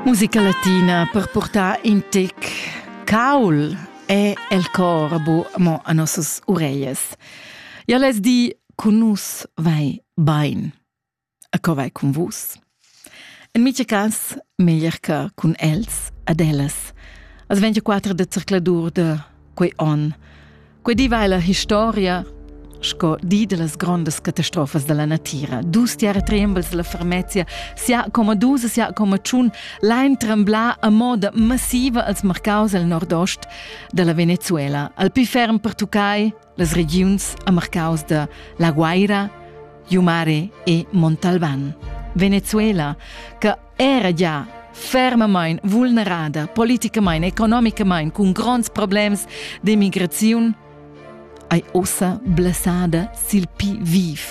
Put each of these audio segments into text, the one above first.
Musica latina per portar in tic caul è el cor bu mo a nossas ureias. Ja les di, con nus vai bain. A co vai con vus? En mica cas meglier che con els ad ellas. As 24 de circladur de quei on, Quei diva ella historia sco di dellas grondas catastrofas dalla natira. Dus tiara trembels dalla Farmezia, sia coma dus e sia coma tschun, lain tremblar a moda massiva als marcaus al nordost dalla Venezuela, al pli ferm pertuccai las regiuns a marcaus da La Guaira, Jumare e Montalban. Venezuela, che era gia fermamain vulnerada politicamain, economicamain, cun gronds problems d'emigraziun, ei ossa blessada sil pi viv.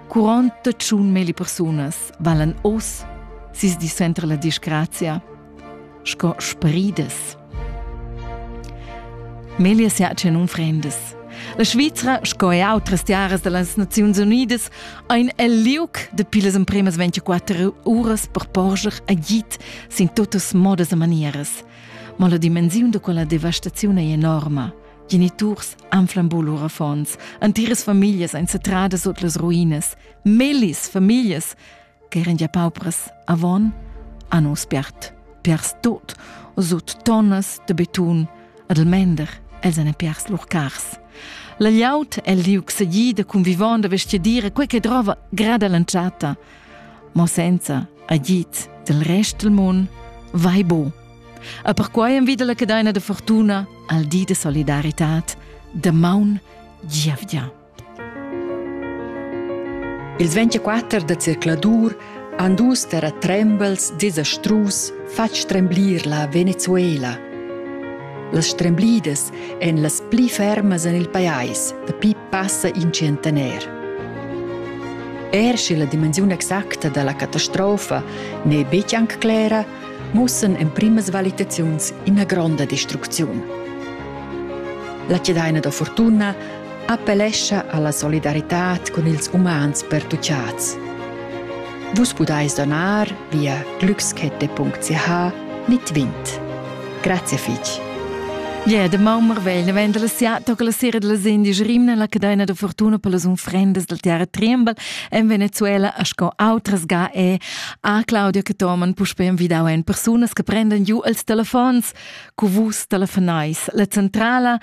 Quaranta tschun meli persunas valan oss sis di center la disgrazia, sco spridas. Meglio sia che non frendes. La Svizra, sco e outras tiaras da las Naziuns Unidas, ein el liuc de pilas empremas 24 uras per porscher agit sin totas modas e manieras. Ma la dimensiun de quella devastaziun è enorma. Geniturs anflambul lur affons, antiras familias ein satradas sut las ruinas, melis familias ch'eran gia paupras avon, han uss spert piars tut sut tonnas de betun ad il mender els han piars lur cars. La gliaut el liug segì da convivon da vestgadira quei che drova grada l'entschatta, ma senza agid del rest del mund vai bo. E perquai envida la cadeina de fortuna al di de solidaritad de maun giavgia. Ils 24 da zercladur han dus terratrembels desastrus fatg stremblir la Venezuela. Las stremblidas èn las pli fermas en il pajais dapi passa in centener. Er sche la dimensiun exacta da la catastrofa n'è betg anc clera, mussan emprimas valitaziuns ina gronda destrucziun. La cedaina da fortuna appellescha alla solidaritad cun ils umans pertuchads. Vus pudais donar via glückskette.ch mit Wind. Grazie fitg. Yeah, de Maumer vegl vendel sia toca la sera della Indi Rimna la cadena de fortuna per las unfrendas del Terra Tremble en Venezuela a sco outras ga e a Claudia che toman puspe envidau en persunas che prendan giu els telefons cu vus telefonais la centrala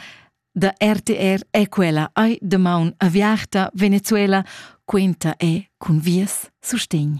Da RTR è quella ei damaun aviarta Venezuela quenta è cun vies sustegn.